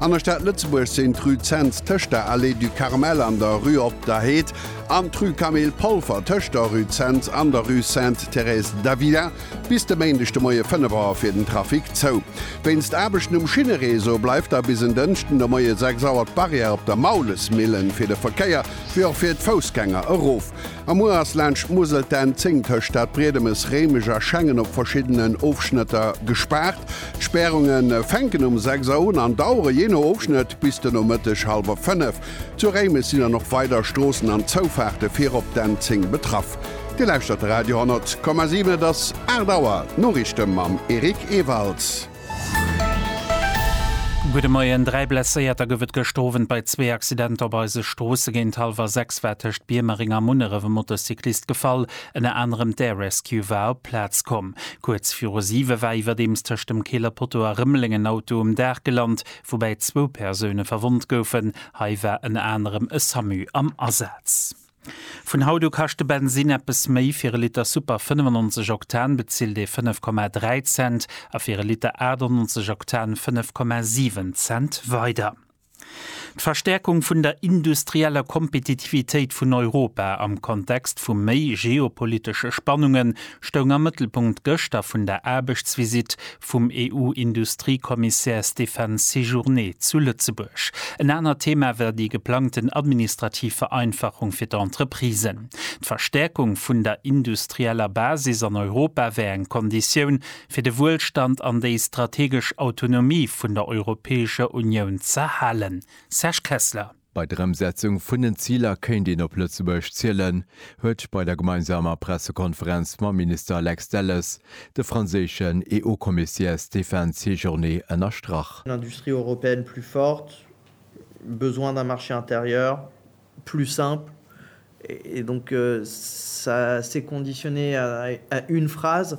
An der Stad Lëtzebuerg sinn d'Rue Zens tëscht der Allée du Carmel an der Rue Op der Heed an d'Rue Camille Polfer tëscht der Rue Zens an der Rue Sainte-Thérèse d'Avila bis de Méindeg de Moie 5 Auer fir den Trafic zou. Wéinst Aarbechten um Schinnereseau bleift da bis en Dënschden de Moie 6 Auer d'Barrière op der Maulesmillen fir de Verkéier wéi och fir d'Foussgänger erof. Am Muer ass laanscht d'Musel d'N 10 tëscht Stad Briedemes, Réimech a Schengen op verschiddenen Ofschnëtter gespaart. D'Spärunge fänken um 6 Auer un an dauere jee no Ofschnëtt bis de Nomëtteg hallwer 5. Zu Réimech sinn dann och weider Stroossen an Zoufaarte fir op d'N 10 betraff. Dir lauschtert de Radio 10,7, et ass 8 Auer. D'Noriichte mam Eric Ewalds. Gudde Moien, Dräi Blesséierter gouf et gëschter Owend bei zwee Accidenter op eise Stroosse. Géint hallwer 6 war tëscht Biermering a Munneref e Motocyclist gefall. Ënner anerem d'Air Rescue war op d'Plaz komm. Kuerz viru 7 war iwwerdeems tëscht dem Keeler Poteau a Rëmeleng en Auto um Daach gelant, woubäi zwou Persoune verwonnt goufen. Hei war ënner anerem e Samu am Asaz. Vun haut u kascht de Bensinn eppes méi, fir e Liter Super 95 Oktan bezilt ee 5,3 Cent a fir e Liter 98 Oktan 5,7 Cent weider. D'Verstäerkung vun der industrieller Kompetitivitéit vun Europa am Kontext vu méi geopolitesche Spannunge stoung am Mëttelpunkt gëschter vun der Aarbechtsvisitt vum EU-Industriekommissär Stéphane Séjourné zu Lëtzebuerg. En anert Thema war déi geplangten administrativ Vereinfachung fir d'Entreprisen. D'Verstäerkung vun der industrieller Basis an Europa wär eng Konditioun, fir de Wuelstand an déi strategesch Autonomie vun der Europäescher Unioun z'erhalen. Serge Kessler. Bei der Ëmsetzung vun den Ziler kéint een op Lëtzebuerg zielen, huet bei der gemeinsamer Pressekonferenz mam Minister Lex Delles de franséischen EU-Commissaire Stéphane Séjourné ënnerstrach. Une industrie européenne plus forte, besoin d'un marché intérieur plus simple et donc ça c'est conditionné à une phrase,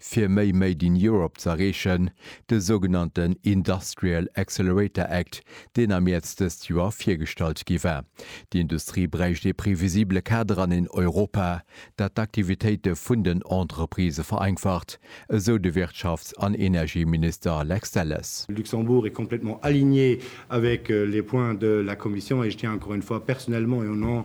Fir méi Made in Europe ze erreechen, de sougenannten Industrial Accelerator Act, deen am Mäerz dëst Joer virgestallt gi war. Déi Industrie bräicht ee previsibele Kader an een Europa, dat d'Aktivitéite vun den Entreprisë vereinfacht, esou de Wirtschafts an Energieminister Lex Delles. Le Luxembourg est complètement aligné avec les points de la Commission et je tiens encore une fois personnellement et au nom